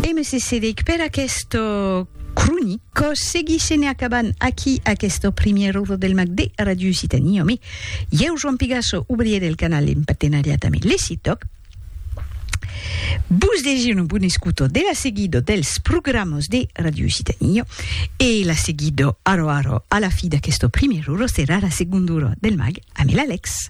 E me cessedic per aquesta cronica. Seguissem e acabam aquí aquesta primièra ora del mag de Radio Occitanie amé ieu, Joan Pigasso, obrier del canal en patenariat amé le CITOC. Vos degi una bona escuta de la seguida dels programas de Radio Occitanie e la seguida ara ara a la fi d'aquesta primièra ora serà la segonda ora del mag amé l'Alex.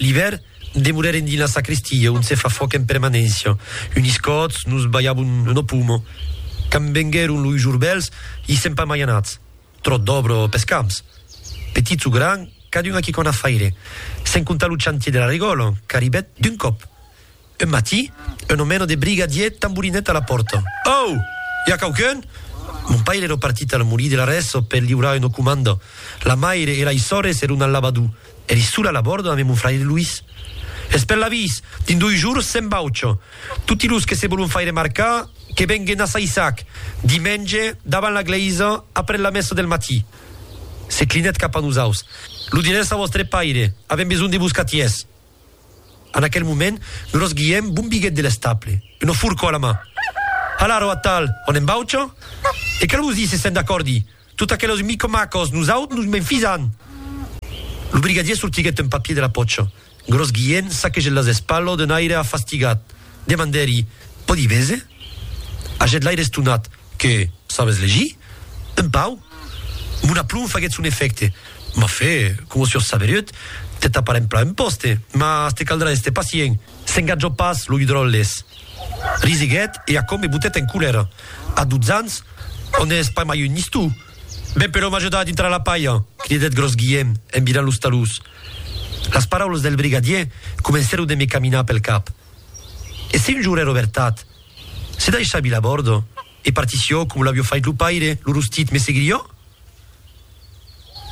L'ivèr, demorèrem dins la sacristia, ont se fa fòc en permanéncia. Unis còts, nos balhavon lo pomo. Quand venguèron los jorbèls, i sèm pas mai anats. Tròt d'òbra pes camps. Petits o grands, cadun a quicòna faire. Sens comptar lo chantier de la regòla, qu'arribèt d'un còp. Un matí, un omeno de briga dièt tamborinèt a la pòrta. Au! I a quauqu'un? Mon paire ero partit al molí de l'Arresso per liurar una comanda. La maire e lei sòrres eron al lavadú. Eri sola a la bòrda ambe mon fraire Luís. Es per l'avís! Dins doi jours se'n vaucha. Toti los que se volon faire marcar, que venguen a Saissac, dimenge, davant la glèisa, après la messa del matí. Se clinèt cap a nosaus. Lo dirètz a vòstre paire. Avèm besonh de vos catièrs. En aquel moment, gros Guièm bombiguèt de l'estaple, una forcò a la man. Hala arò atal, on en baucha? E qu'a los díser se'n d'acòrdi! Tot aquelos micomacos, nosaut nos m'enfisan! Lo brigadier sortiguèt un papier de la pòcha. Gros Guièm saquegèt las espalhos d'un aire afastigat. Demandèri, Pòdi véser? Hagèt l'aire estonat. Que sabes legir? Un pauc. Mon aplomb faguèt son efècte. M'a fait, coma sur saberut, te taparem plan un pòste, mas te caldrà èster pacient. S'engatjò pas lo Hudrolles. Risiguèt e aquò me botèt en colèra. A dotze ans, o n'ès pas mai un nistou? Ben, però m'ajuda a dintrar la palha! cridèt Gròs Guièm en virant los talús. Las paraulas del brigadier comencèron de me caminar pel cap. E si un jorn èra vertat? Se daissà vila bòrdo e partissió com l'avió fait lo paire, lo rostit me seguirió?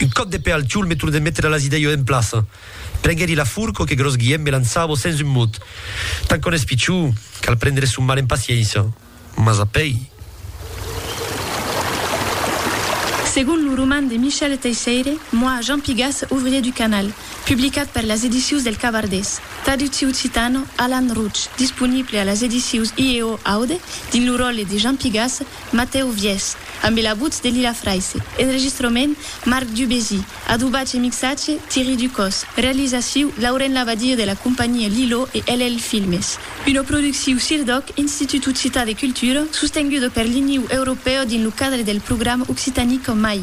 Un còp de pè al tiol me tornèt metre las idèio en plaça. Prenguèri la furco que Gròs Guièm me lançavo sens un mot. Tant qu'òn es pichó, cal prendre son mal en paciéncia. Mas apèi. Segon lo roman de Michel Teisseire, Moi, Jean Pigas, ouvrier du canal, publicat per las Edicions del Cavardés. Traductiu occitano, Alan Roche, disponible a las edicius IEO Aude, dins lo ròtle de Jean Pigasse, Matèu Viès, ambe la votz de Lila Fraisse, enregistrament, Marc Dubésy, adobatge e mixatge, Thierry Ducos, realizaciu, Lauren Labadie de la companhia Lilo e LL Filmes. Una producciu CIRDOC, Institut Occitan de Cultura, sostenguda per l'Iniu Europèu dins lo cadre del programa Occitanie qu'en mai.